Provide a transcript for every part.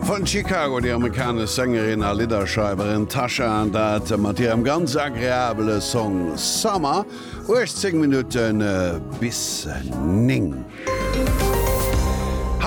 Von Chicago, déi amerikanesch Sängerin a Lidderschreiwerin Tasha, an dat mat hirem ganz agreabele Song Summer, 18 Minutte bis 9.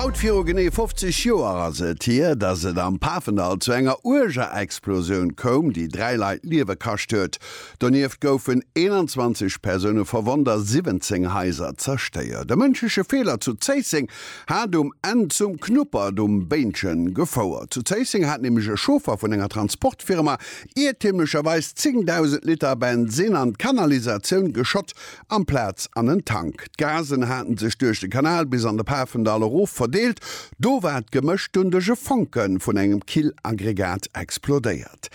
Haut viru genee 50 Joer ass et hier, datt et am Pafendall zu enger uerger Explosioun koum, déi dräi Leit d'Liewe kascht huet. Donieft goufen 21 Persoune verwonnt a 17 Haiser zerstéiert. E mënschleche Feeler zu Zéisseng hat um Enn zum Knuppert um Béinchen gefouert. Zu Zéisseng hat nämlech e Chauffer vun enger Transportfirma iertümlecherweis 10.000 Liter Bensinn an d'Kanalisatioun geschott amplaz an en Tank. D'Gasen haten sech duerch de Kanal bis an de Pafendall erof verdeelt. Do war d'Gemësch dunn duerch e Fonke vun engem Killaggregat explodéiert.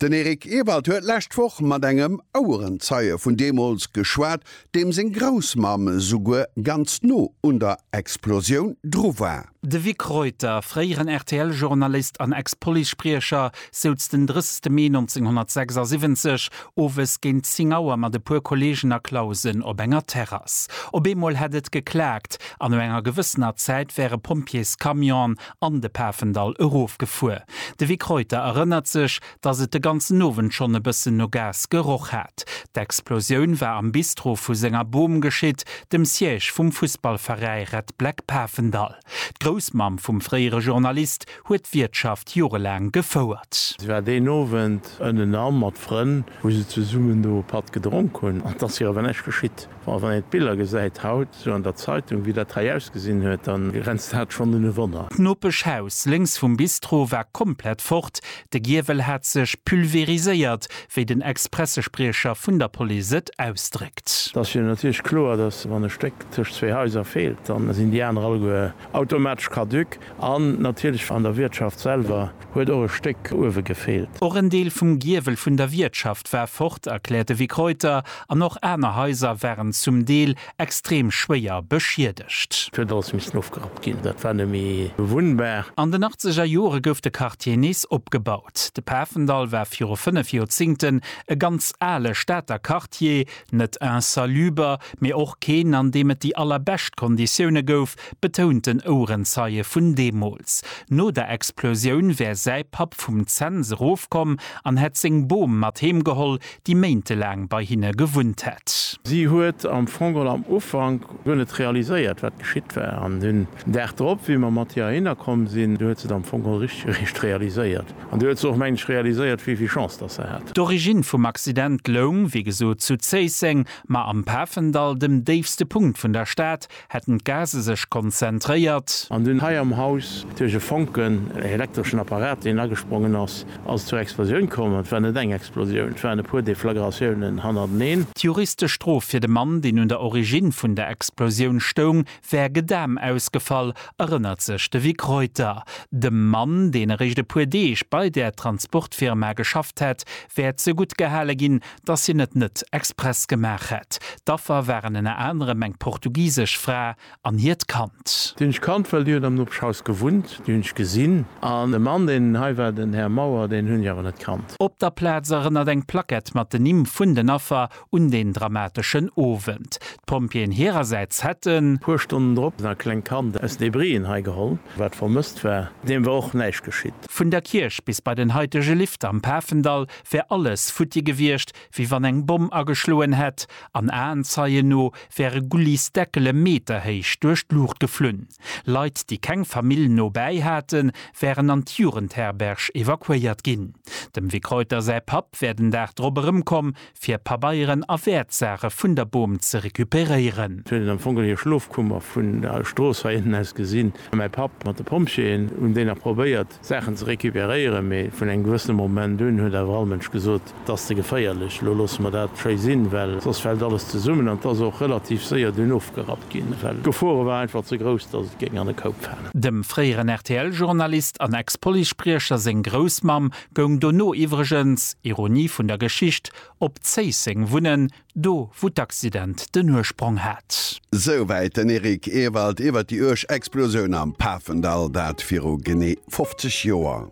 Den Eric Ewald huet lescht Woch mat engem Auerenzeie vun deemools geschwat. deem seng Groussmamm souguer ganz no un der Explosioun dru war. De Vic Reuter, fréieren RTL-Journalist an Ex-Police-Spriecher, souz den 30 Mee 1976 owes géint 10 Auer mat e puer Kolleegen a Clausen op enger Terrass. Op eemol hätt et geklaakt an no enger gewëssener Zäit wäre Pompjeescamionen an de Pafendall erofgefuer. De Vic Reuter erënnert sech, dass et de ganzen Owend schonn e bëssen no Gas geroch hat. D'Explosioun war am Bistro vu senger Bom geschitt, dem Siège vum Fussballveräi Red Black Pafendall. D'Groussmamm vum fréiere Journalist huet d'Wiertschaft jorelaang gefouert. Si war deen Owend ënnenan mat Frënn, wou se zesummen do e Patt gedronk hunn. An et ass hir awer näischt geschitt. Bon, wann een d'Biller gesäit haut, sou an der Zeitung, wéi dat hei ausgesinn huet, da grenzt dat schonn un e Wonner. D'Nopeschhaus lénks vum Bistro war komplett fort, de Giewel hat sech pulveriséiert, wéi den Ex-Pressespriecher vun der Police et ausdréckt. Et ass jo natierlech kloer, datt wann e Stéck tëscht zwee Haiser feelt, da sinn déi aner alleguer automatesch caduc. An natierlech an der Wiertschaft selwer. huet och e Stéck uewe gefeelt. Och en Deel vum Giewel vun der Wiertschaft war fort, erkläert de Vic Reuter, an och aner Haiser waren zum Deel extrem schwéier beschiedegt. Et huet alles missen ofgerappt ginn, dat war net méi bewunnbar. An den achtzeger Jore gouf de Quartier nees opgebaut. De Pafendall war viru fënnef Joerzingten e ganz ale Stater Quartier, net insaluber, mee och keen, an deem et déi allerbescht Konditioune gouf, betount den Ouerenzeie vun deemools. No der Explosioun wär säi Papp vum Zens erofkomm an hätt seng Bom mat heem geholl, déi méintelaang bei hinne gewunnt hätt. Si huet am Fong geholl am Ufank guer net realiséiert, wat geschitt war. An den Dag drop, wéi mer mat hir heihinner komm sinn, du huet se et am Fong geholl richteg eréischt realiséiert. An du huet se och, meng ech, realiséiert, wéi vill Chance datt se hat. D'Origine vum Accident loung, wéi gesot, zu Zéisseng, ma am Pafendall, dem déifste Punkt vun der Stad, Hätten d'Gase sech konzentréiert. An dunn hei am Haus duerch e Fonken, ee elektreschen Apparat, deen agesprongen ass, ass et zur Explosioun komm. An et war net eng Explosioun, et waren e puer Deflagratiounen hannerteneen. D'juristesch Strof fir de Mann, deen un der Origine vun der Explosioun stoung, wär Gedam ausgefall, erënnert sech de Vic Reuter. Dem Mann, deen eréischt e puer Deeg bei där Transportfirma geschafft hätt, wär zeguttgehale ginn, dass hien et net express gemaach hätt. D'Affer waren ënner anerem eng portugisesch Fra an hiert Kand. Déi hunn ech kannt, well déi huet am Nopeschhaus gewunnt. Déi hunn ech gesinn. An de Mann, deen hei war, den Här Mauer, deen hunn ech awer net kannt. Op der Plaz erënnert eng Plackett mat den Nimm vun den Affer un deen dramateschen Owend. D'Pompjeeën hirersäits hätten. Puer Stonnen drop e klengt Kand aus Debrien hei geholl, wat vermësst war. Deem war och näischt geschitt. Vun der Kierch bis bei den haitege Lift am Pafendall wär alles futti gewiescht, wéi wann eng Bomm ageschloen hätt, an Aenzeien no wäre Gullis Deckele meterhéich duerch d'Luucht geflunn. Leit, déi keng Famill no bäi haten, wären an d'Jugendherberg evakuéiert ginn. Dem Vic Reuter säi Papp wär den Dag drop erëmkomm, fir Pabeieren a Wäertsaache vun der Bom ze recuperéieren. Sou huet et am Fong geholl hir Schlofkummer vun der Strooss hei ënnen aus gesinn. Mäi Papp mat de Pompjeeën hunn déi nach probéiert, Saachen ze recuperéieren, mee vun engem gewëssene Moment un huet awer all Mënsch gesot, Et ass ze geféierlech, elo loosse mer dat schéi sinn, well soss fält alles zesummen. An et ass och relativ séier dunn ofgerappt ginn, well d'Gefore war einfach ze grouss, datt et géing an e Koup falen. Dem fréieren RTL-Journalist an Ex-Policespriecher seng Groussmamm goung dono iwwregens, Ironie vun der Geschicht, op Zéisseng wunnen, Do wou d'Accident den Ursprong hat. Souwäit den Eric Ewald iwwert déi uerg Explosioun am Pafendall, dat viru genee 50 Joer.